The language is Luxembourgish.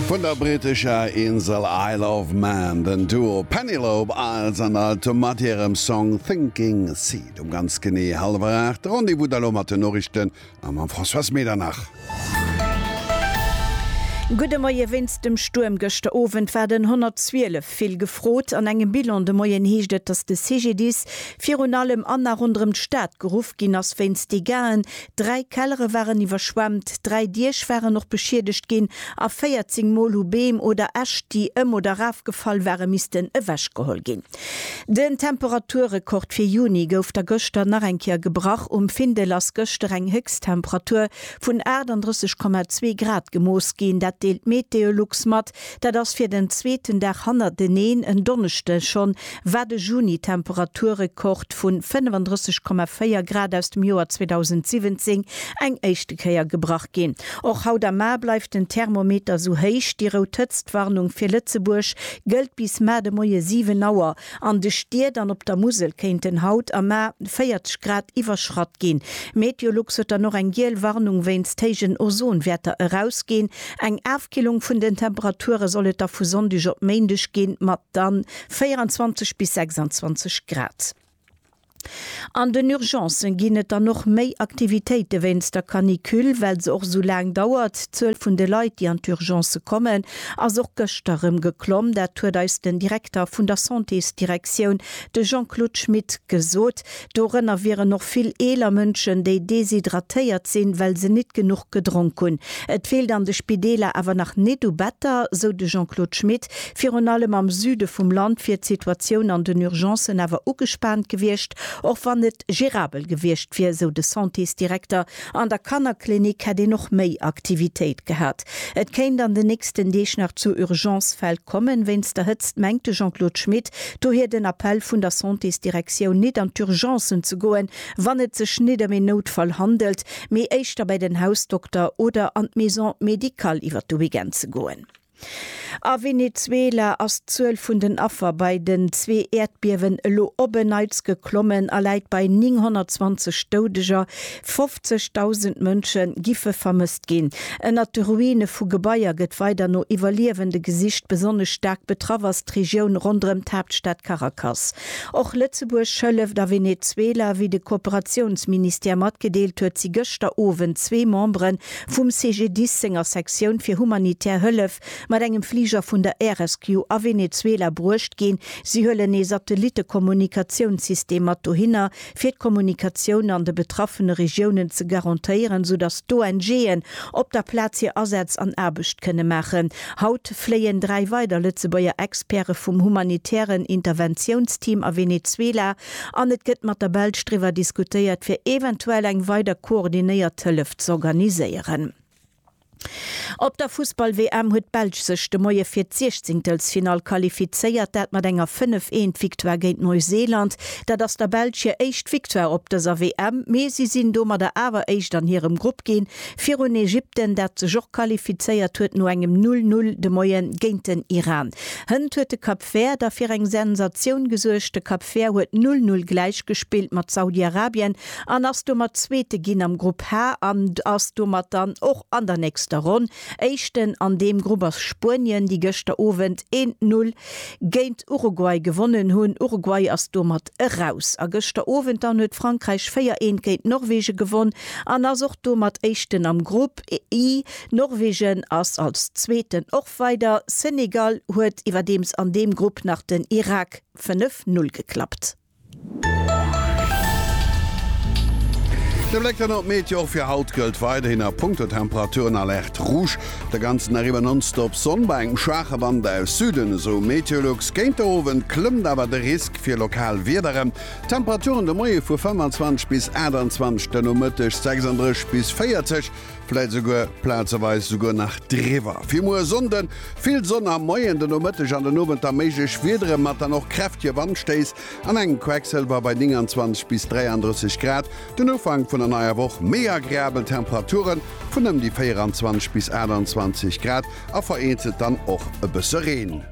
Vun der brittescher Insel Isle of Man den Duo Penelope Isles an Alto mat hirem Song Sinking Seed. Um ganz genee hallwer 8 de Rendez-vous da lo mat den Noriichten a mam Françoise Medernach. Gudde Moie, Wéinst dem Stuerm gëschter Owend war den 112 vill gefrot. An engem Bilan de Moien heescht et, datt de CGDIS virun allem an a ronderëm d'Stad geruff ginn ass wéinst Degaen, Dräi Kellere waren iwwerschwemmt, dräi Diech waren och beschiedegt ginn a 14 Mol hu Beem oder Äscht, déi ëm oder erafgefall ware missten ewechgeholl ginn. Den Temperaturrekord fir Juni gouf da gëschter nach eng Kéier gebrach. Um Findel ass gëschter eng Héchsttemperatur vun 38,2 Grad gemooss ginn. Dat deelt Meteolux mat. Dat ass fir den zweeten Dag hannerteneen en Donneschde schonn, wat e Juni-Temperaturrekord vu 35,4 Grad aus dem Joer 2017 eng éischte Kéier gebrach ginn. Och haut am Mar bleift den Thermometer esou héich. Déi rout Hëtztwarnung fir Lëtzebuerg gëllt bis mar de Moie 7 Auer. An de Stied an op der Musel kéinten haut am Mar 40 Grad iwwerschratt ginn. Meteolux huet dann och eng giel Warnung wéinst héijen Ozonwäerter erausginn. Eng Afkillung vun den Temperature soll et da vu Sonndeg op Méindeg ginn, mat dann 24 bis 26 Grad. An den Urgencen ginn et dann och méi Aktivitéite wéinst der Canicule, well se och esou laang dauert. D'Zuel vun de Leit, déi an d'Urgencë kommen, ass och gëschter erëm geklomm. Dat huet eis den Direkter vun der Santésdirektioun, de Jean-Claude Schmit, gesot. Dorënner wieren och vill eeler Mënschen, déi deshydratéiert sinn, well se nit genuch gedronk hunn. Et feelt an de Spideeler awer nach nit u Better, sou de Jean-Claude Schmit. Virun allem am Süde vum Land wier d'Situatioun an den Urgencen awer ugespaant gewiescht, och wann et gerabel gewiescht wier, sou de Santésdirekter. An der Kannerklinik hätt een och méi Aktivitéit gehat. Et kéint an den nächsten Deeg nach zu Urgencefäll kommen, wéinst der Hëtzt, mengt de Jean-Claude Schmit. Dohier den Appell vun der Santésdirektioun, nit an d'Urgencen ze goen, wann et sech nit ëm een Noutfall handelt, mee éischter bei den Hausdokter oder an d'Maison médicale iwwer de Weekend ze goen. A Venezuela ass d'Zuel vun den Affer bei den zwee Äerdbiewen elo op en Neits geklommen a läit bei 920 Doudeger. 50.000 Mënsche giffe vermësst ginn. Ënnert de Ruine vu Gebaier gëtt weider no Iwwerliewende gesicht. Besonnesch staark betraff ass d'Regioun ronderëm d'Haaptstad Caracas. Och Lëtzebuerg hëlleft. A Venezuela, wéi de Kooperatiounsministère matgedeelt huet, si gëschter Owend zwee Membere vum CGDIS senger Sektioun fir humanitär Hëllef mat engem Fliger vun der Air Rescue a Venezuela bruecht ginn. Si huelen ee Satellittekommunikatiounssystem mat dohinner, fir d'Kommunikatioun an de betraffene Regiounen ze garantéieren, sou datt d'ONGen op der Plaz hir Asätz an Aarbecht kënne maachen. Haut fléien dräi weider Lëtzebuerger Experte vum humanitären Interventiounsteam a Venezuela. An et gëtt mat der Belsch driwwer diskutéiert, fir eventuell eng weider koordinéiert Hëllef z'organiséieren. Op der Fussball-WM huet d'Belsch sech de Moie fir d'Siechzingtelsfinall qualifizéiert, dat mat enger 5, eent Victoire géint Neuseeland. Dat ass der Belsch hir éischt Victoire op dëser WM, mee si sinn domadder awer éischt an hirem Grupp ginn. Virun Ägypten, dat sech och qualifizéiert huet no engem Null-Null de Moien géint den Iran. Hënt huet de Cap Vert da fir eng Sensatioun gesuergt. De Cap Vert huet Null-Null gläichgespillt mat Saudi-Arabien an ass domat Zweete ginn am Grupp H an ass domat dann och an der nächster Ronn Éischten. An deem Grupp ass Spuenien, déi gëschter Owend een Null géint Uruguay gewonnen hunn. Uruguay ass domat. eraus. A gëschter Owend dann huet Frankräich 4, 1 géint Norwegen gewonn an ass och domat Éischten am Grupp I. Norwegen ass als Zweeten och weider. Senegal huet iwwerdeems an deem Grupp nach den Irak 5, 0 geklappt. De Bléck dann op d'Meteo, Och fir haut gëllt weiderhin a punkto Temperaturen Alerte Rouge. Op der ganzen Ariba nonstop Sonn bei engem schwaache Wand aus Süden, esou Meteolux. Géint de Owend klëmmt awer de Risk. Fir lokal Wiederen, Temperaturen de Moie vu 25 bis 28, de Nomëtteg 36 bis 40, vläit souguer plazeweis souguer nach driwwer. Fir muer e Sonnde, Vill Sonn am Moien, de Nomëtteg an den Owend da méiglech Wiedere mat dann och kräftege Wandstéiss an engem Quecksëlwer bei 29 bis 33 Grad. Den Ufank vun der neier Woch, Méi agreabel Temperature vun ëm déi 24 bis 28 Grad a vereenzelt dann och e bësse Reen.